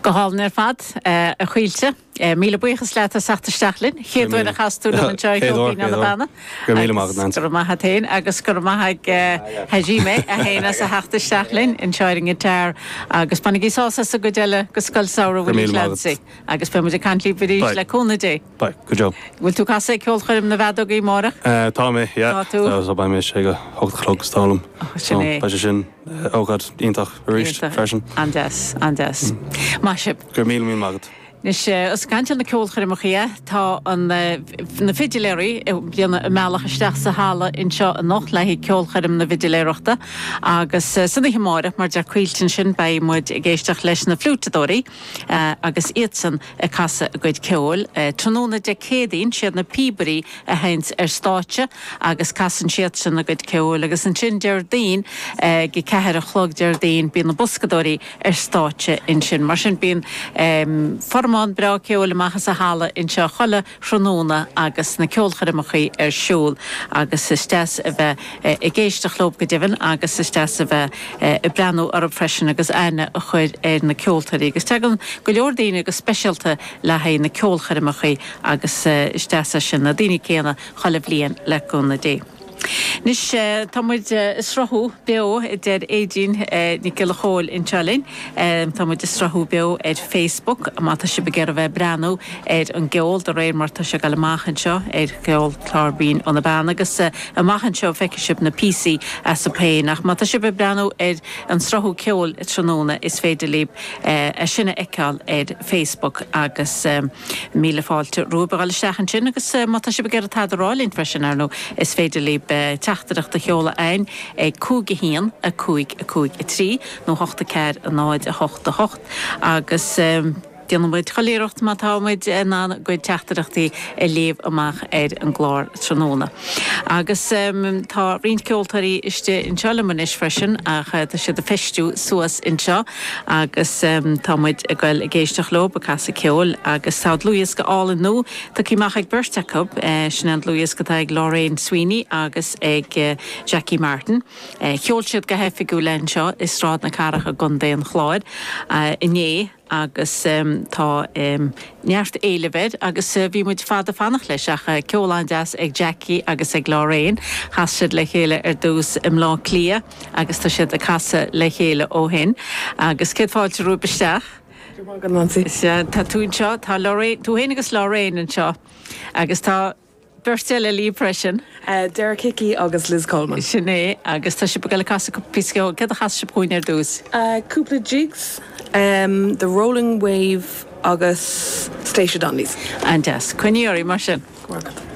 Go hálainn ar fad, a Chaoilte. Míle buíochas leat as theacht isteach linn. Chéad uair a chas tú liom anseo ag Ceol Binn ó na Beanna. Go raibh maith a't fhéin agus go raibh maith ag eh, Hajime ansin as a theacht isteach linn anseo ar an ngiotáir. Agus bainigí sás as an gcuid eile de Scoil Samhraidh Willie Clancy. Agus beidh muid ag caint libh arís le cúnamh Dé. Beidh, go deo. Bhfuil tú casadh ag ceolchoirm na bhfeadógaí amárach? Tá mé, yeah. Tá tú? So beidh mé istigh ag a hocht a chlog, is dóigh liom. Oh, sin é. So beidh sé sin ócáid iontach arís freisin. An-deas, an-deas. Maith sibh. Go raibh míle míle maith agat. Anois, os caint ar na ceolchoirmeacha dhe, tá na fidiléirí ag déanamh a mbealach isteach sa halla anseo anocht le haghaidh ceolchoirm na fidiléireachta agus san oíche amárach, mar a deir Caoilte ansin, beidh muid ag éisteacht leis na fliúiteadóirí agus iadsan. ag casadh a gcuid ceoil. Tráthnóna Dé Céadaoin, siad na píobairí a théann ar stáitse agus casann siadsan a gcuid ceoil agus ansin Déardaoin, ag a ceathair a chlog Déardaoin, bíonn na boscadóirí ar stáitse ansin. Mar sin bíonn formán breá ceoil amach as an halla anseo chuile. thráthnóna agus na ceolchoirmeacha ar siúl agus is deas a bheith ag éisteacht leo go deimhin agus is deas a bheith ag breathnú orthu freisin agus aithne a chur ar na ceoltóirí agus tagann go leor daoine go speisialta le haghaidh na ceolchoirmeacha agus is deas é sin, na daoine céanna chuile bhliain le cúnamh Dé. Anois tá muid ag sruthú beo, a deir Éadaoin Nic Giolla Chomhaill anseo liom. Tá muid ag sruthú beo ar Facebook má tá sibh ag iarraidh a bheith ag breathnú ar an gceol de réir mar tá sé ag dul amach anseo ar Ceol Binn ó na Beanna agus amach anseo feicfidh sibh na píosaí astu féin ach má tá sibh ag breathnú ar an sruthú ceoil tráthnóna is féidir libh é sin a fheiceáil ar Facebook agus. Míle fáilte romhaibh a dhul isteach ansin agus má tá sibh ag iarraidh tada a rá linn freisin, ar ndóigh, is féidir libh teachtaireacht a sheoladh againn ag 5 1 5 5 3 nó 8 4 0 8 8 agus déanfaidh muid chuile iarracht má tá muid in ann bhur gcuid teachtaireachtaí a léamh amach ar an gclár tráthnóna. Agus tá roinnt ceoltóirí istigh anseo liom anois freisin ach tá siad ag feistiú suas anseo. Agus tá muid ag goil ag éisteacht leo ag casadh ceoil agus tá dlúthdhiosca álainn nua tugtha amach ag beirt acu. Sin é an dlúthdhiosc atá ag Lorraine Hickey agus ag Jackie Martin. Sheol siad go hoifigiúil é anseo i Sráid na Cathrach i gContae an Chláir inné agus tá neart éilimh air agus bhí muid fada ag fanacht leis ach ceol an-deas ag Jackie agus ag Lorraine. Chas siad le chéile ar dtús i mBleá Cliath. agus tá siad ag casadh le chéile ó shin agus céad fáilte romhaibh isteach. Go raibh maith agat Neansaí. Is ea, tá tú anseo, tá Lorraine, tú féin agus Lorraine anseo agus tá beirt eile libh freisin. Derek Hickey agus Liz Coleman. Sin é agus tá sibh ag dul ag casadh cúpla píosa ceoil, céard a chasfas sibh dúinn ar dtús? Cúpla jigs, The Rolling Wave agus Stacia Donnelly's. An-deas, coinnígí oraibh mar sin. Go raibh maith agat.